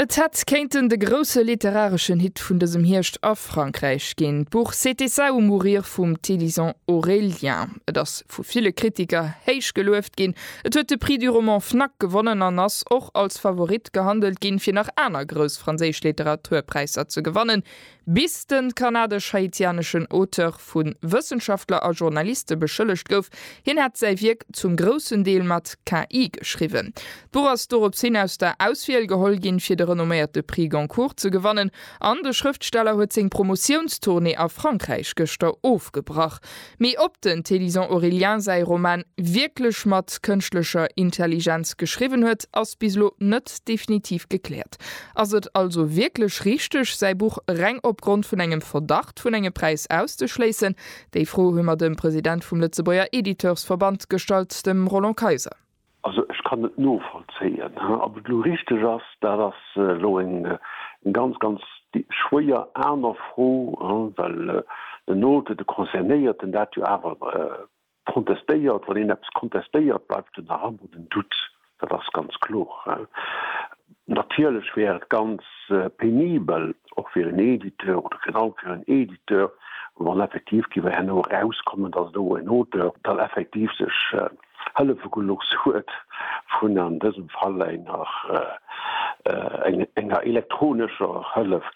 Et hätt kéinten de grousse literareschen Hit vun dësem Hierscht a Frankräich ginn, d'Buch C'était ça ou mourir vum Télisant Aurélien. Et ass vu ville Kritiker héich gelueft ginn, et huet de Prix du roman Fnac gewonnen an ass och als Favorit gehandelt ginn, fir nach aner grouss franséisch Literaturpräisser ze gewannen, Bis den kanadesch-haitianeschen Auteur vu Wëssenschaftler a Journaliste beschëllegt gouf, hien hätt säi Wierk zum groussen Deel mat KI geschriwwen. D'Buch ass dorops hin aus der Auswiel geholl ginn, fir de renomméierte Prix Goncourt ze gewannen, an de Schrëftsteller huet seng Promotiounstournée a Frankräich gëschter ofgebrach. Mee ob den Thélyson Aurélien säi Roman wierklech mat kënschtlecher Intelligenz geschriwwen huet, ass bis elo net definitiv gekläert. Verdacht. Ass et also wierklech richteg, säi Buch reng opgrond vun engem Verdacht vun engem Präis auszeschléissen? Déi Fro hu mer dem President vum Lëtzebuerger Editeursverband gestallt, dem Roland Kayser. Also ech kann et novollzéien. Ob et elo richteg ass, dat ass elo eng ganz, ganz schwéier aner Fro, well den Auteur, de Concernéierten dat jo awer Contestéiert, wann een eppes contestéiert, bleift en nach ëmmer den Doute, dat ass ganz kloer. Natierlech wär et ganz penibel, och fir en Editeur oder virun allem fir en Editeur, wann effektiv géif herno erauskommen, datt do en Auteur dann effektiv sech hëllefe gelooss huet vun an dësem Fall enger enger elektronescher Hëllef.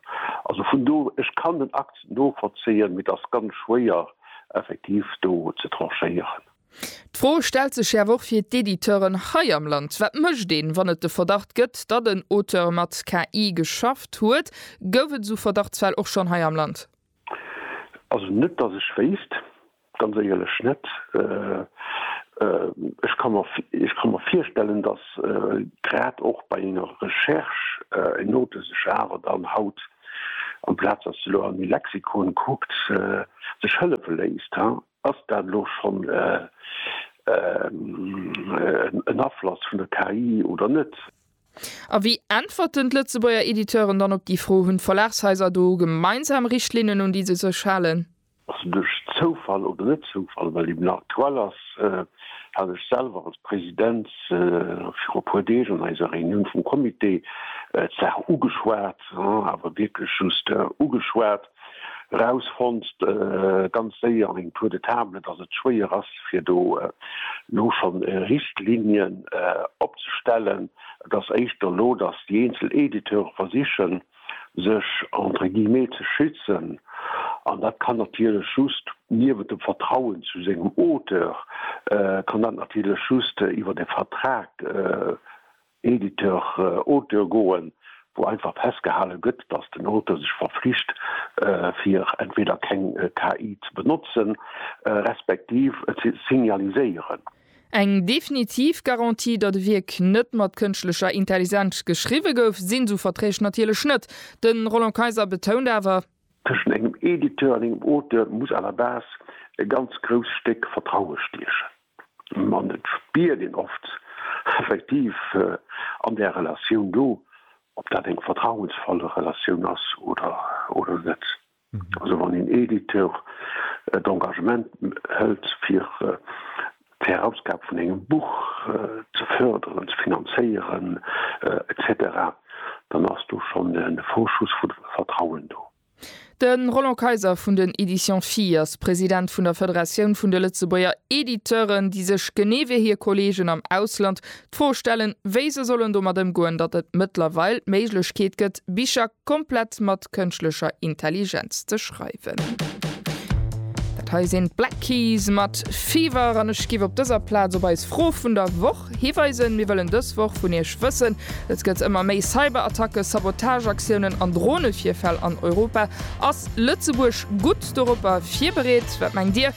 Also vun do, ech kann den Akt novollzéien, mee et ass ganz schwéier, effektiv do ze tranchéieren. D'Fro stellt sech schärf och fir d'Editeuren hei am Land. Wat mécht een, wann et de Verdacht gëtt, datt en Auteur mat KI geschafft huet? Gouf et esou Verdachtsfäll och schonn hei am Land? Also net, datt ech wéisst, ganz éierlech net. Ech ka mer, ech ka mer virstellen, datt grad och bei enger Recherche en Auteur sech awer dann haut Amplaz datt se elo an e Lexikon kuckt, sech hëllefe léisst, ass dat elo schonn en Afloss vun der KI oder net? A wéi äntwerten d'Lëtzebuerger Editeuren dann op déi Fro? Hunn d'Verlagshaiser do gemeinsam Richtlinnen un déi se sech halen? Also duerch Zoufall oder net Zoufall, well eben aktuell ass, hat ech selwer als President viru e puer Deeg an eiser Reunioun vum Comité d'Saach ugeschwat, awer wierklech just ugeschwat, erausfonnt ganz séier en tour de table, dass et schwéier ass fir do elo scho Richtlinien opzestellen, et ass éischter elo, dass déi eenzel Editeure versichen, sech entre guillemets ze schützen, an dat kann natierlech just, niewent dem Vertrauen zu sengem Auteur, kann dat natierlech just iwwert e Vertrag Editeur-Auteur goen, wou einfach festgehale gëtt, datt den Auteur sech verflicht, fir entweder keng KI ze benotzen, respektiv et ze signaliséieren. Eng definitiv Garantie, datt e Wierk net mat kënschtlecher Intellisenz geschriwwe gouf, sinn esou Verträg natierlech net. De Roland Kayser betount awer. Tëschent engem Editeur an engem Auteur muss à la base e ganz grousst Stéck Vertraue stiechen. An et spiert een oft effektiv an där Relatioun do, ob dat eng vertrauensvoll Relatioun ass oder net. Also wann een Editeur d'Engagement hëlt fir d'Erausgab vun engem Buch ze fërderen, ze finanzéieren etc, dann ass do schonn e Vorschuss vu Vertrauen do. De Roland Kayser vun den Editions Phi ass President vun der Federatioun vun de Lëtzebuerger Editeuren, déi sech, genee wéi hir Kolleegen am Ausland, d'Fro stellen, wéi se sollen domat ëmgoen, datt et mëttlerweil d'Méiglechkeet gëtt, Bicher, Komplett mat kënschtlecher Intelligenz ze schreiwen. Dat hei sinn d'Black Keys mat Fever an ech giff op dëser Plaz op eis Fro vun der Woch hiweisen. Mir wëllen dës Woch vun iech wëssen, Et gëtt ëmmer méi Cyberattacken, Sabotageaktiounen an Dronevirfäll an Europa. Ass Lëtzebuerg gutt doropper virbereet? Wat mengt dir?